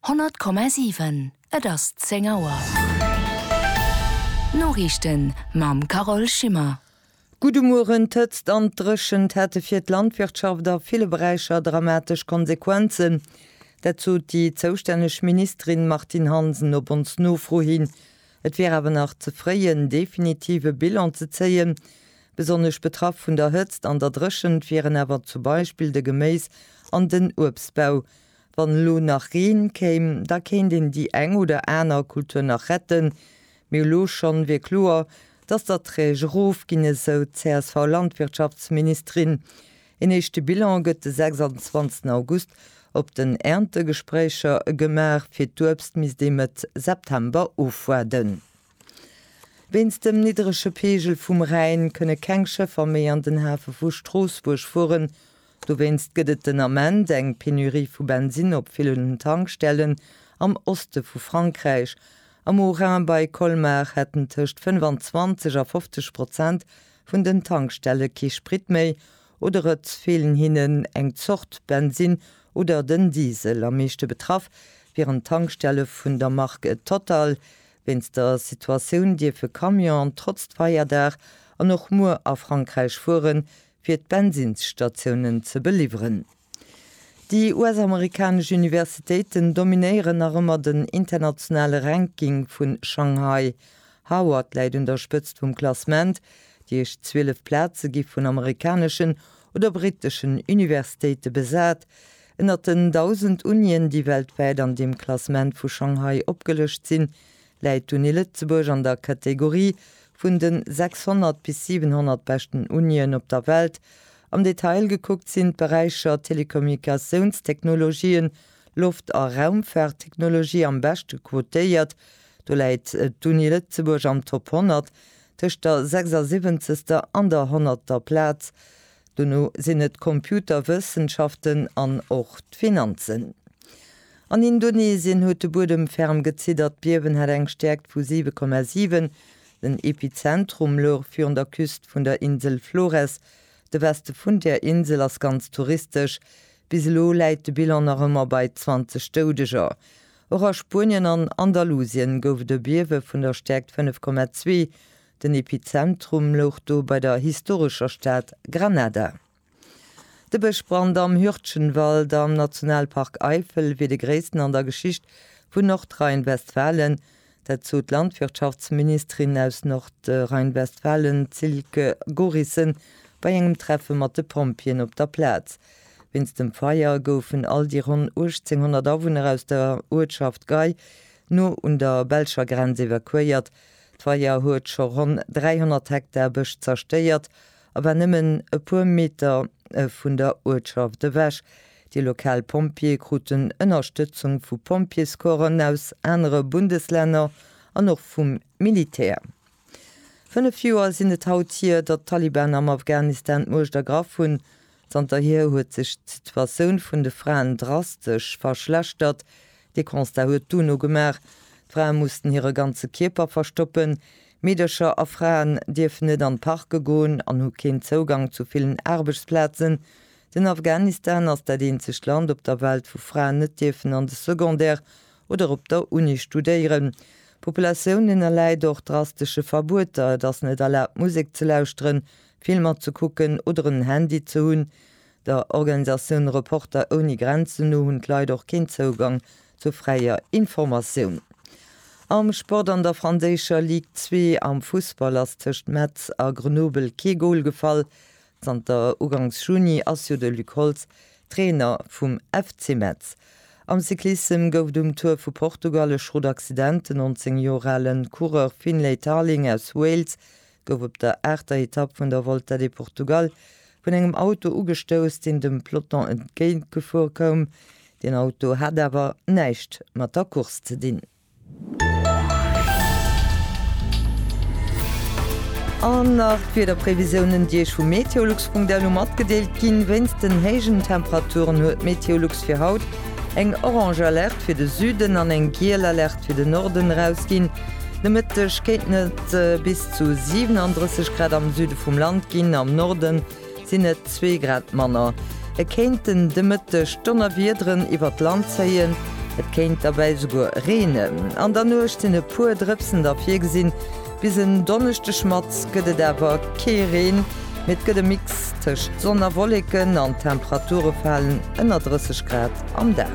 100,7 Et ass 10 Auer. D'Noriichten mam Carole Schimmer. Gudde Mueren, D'Hëtzt an d'Dréchent hätte fir d'Landwirtschaft a ville Beräicher dramatesch Konsequenzen. Dat sot déi zoustänneg Ministerin Martine Hansen op ons Nofro hin. Et wier awer nach ze fréi en definitive Bilan ze zéien, Besonnesch betraff vun der Hëtzt an der Dréchent wieren awer zum Beispill de Geméis an den Uebstbau. Wann elo nach Reen kéim, da kéint een déi eng oder aner Kultur nach retten, mee elo schonn wier kloer, dass d'Erträg erofginn, esou d'CSV-Landwirtschaftsministerin. Een éischte Bilan gëtt de 26 August op den Erntegespréicher gemaach, fir d'Uebst misst ee Mëtt September ofwaarden. Wéinst dem niddrege Peegel vum Rhäin kënne keng Schëffer méi an den Hafe vu Stroossbuerg fueren. Dowéinst gëtt et den Ament eng Penurie vu Bensinn op villen Tankstellen am Oste vu Frankräich. Am Haut-Rhin bei Colmar hätten tëscht 25 a 50 Prozent vun den Tankstelle kee Sprit méi oder et feelen hinnen eng Zort Bensinn oder den Diesel. Am meeschte betraff wieren d'Tankstelle vun der Mark Total, Wéinst der Situatioun dierf e Camion an trotz Feierdag an och muer a Frankräich fuere fir d'Bensinnsstatiounen ze beliwweren. Déi US-amerikanesch Universitéiten dominéieren nach ëmmer den internationale Ranking vun Shanghai. Harvard läit un der Spëtzt vum Klassement, déi éischt 12 Plaze gi vun amerikaneschen oder britteschen Universitéite besat. Ënnert den 1.000 Unien, déi weltwäit an deem Klassement vu Shanghai opgelëscht sinn, läit d'Uni Lëtzebuerg an der Kategorie vun den 600 bis 700 beschten Unien op der Welt. Am Detail gekuckt sinn d'Beräicher Telekommunikatiounstechnologien, Loft a Raumfaarttechnologie am beschte quotéiert. Do läit d'Uni Lëtzebuerg am Top 100, tëscht der 76. an der 100. Plaz. Dono sinn et d'Computerwëssenschaften an och d'Finanzen. An Indonesien huet de Buedem ferm geziddert. D'Biewen hat eng Stäerkt vu 7,7. Den Epizentrum louch virun der Küst vun der Insel Flores. De Weste vun där Insel ass ganz touristesch. Bis elo läit de Bilan nach ëmmer bei 20 Doudeger. Och a Spuenien an Andalusien gouf et e Biewe vun der Stäerkt 5,2. Den Epizentrum louch do bei der historescher Stad Granada. De Bëschbrand am Hürtgenwald am Nationalpark Eifel wier de gréissten an der Geschicht vun Nordrhein-Westfalen. Dat sot d'Landwirtschaftsministerin aus Nordrhein-Westfalen Silke Gorissen bei engem Treffe mat de Pompjeeën op der Plaz. Wéinst dem Feier goufen all déi ronn 1.800 Awunner aus der Uertschaft Gay, no un der belscher Grenz, evakuéiert. D'Feier huet scho ronn 300 Hektar Bësch zerstéiert a war nëmmen e puer Meter vun der Uertschaft ewech. Déi lokal Pompjeeë kruten Ënnerstëtzung vu Pompjeescorpsen aus anere Bundeslänner an och vum Militär. Fënnef Joer sinn et haut hier, datt d'Taliban am Afghanistan d'Muecht ergraff hunn. Zanterhier huet sech d'Situatioun vun de Fraen drastesch verschlechtert. Dee Constat huet d'UNO gemaach. D'Frae mussten hire ganze Kierper verstoppen. Meedercher a Fraen dierfen net an d'Parke goen an hu keen Zougang zu villen Aarbechtsplazen. Den Afghanistan ass dat eenzegt Land op der Welt, wou Fraen net dierfen an de Secondaire oder op der Uni studéieren. D'Populatioun ënnerläit och drastesche Verbueter, et ass net erlaabt Musek ze lauschteren, Filmer ze kucken oder en Handy ze hunn. Der Organisatioun Reporter ouni Grenzen no hunn d'Leit och keen Zougang zu fräier Informatioun. Am Sport, An der franséischer Ligue 2 am Fussball ass tëscht Metz a Grenoble kee Gol gefall. Zanter ugangs Juni ass jo de Luc Holtz Trainer vum FC Metz. Am Cyclissem gouf et um Tour vu Portugal e Schrott Accident. Den 19 Joer ale Coureur Finlay Tarling aus Wales gouf op der aachter Etapp vun der Volta de Portugal vun engem Auto ugestouss, deen dem Peloton entgéint gefuer koum. Deen Auto hat awer näischt mat der Course ze dinn. An nach d'Wiederprevisiounen, déi Iech vu meteolux.lu matgedeelt ginn. Wéinst den héijen Temperaturen huet Meteolux fir haut eng orange Alerte fir de Süden an eng giel Alerte fir den Norden erausginn. De Mëtteg kéinten et bis zu 37 Grad am Süde vum Land ginn, am Norde sinn et zwee Grad manner. Et kéinten de Mëtteg Donnerwiederen iwwert d'Land zéien, et kéint derbäi esouguer reenen. An der Nuecht sinn e puer Drëpsen da virgesinn. Bis en Donneschdeg mat gëtt et awer kee Reen, mee et gëtt e Mix tëscht Sonn a Wolleken an d'Temperature falen ënner 30 Grad am Dag.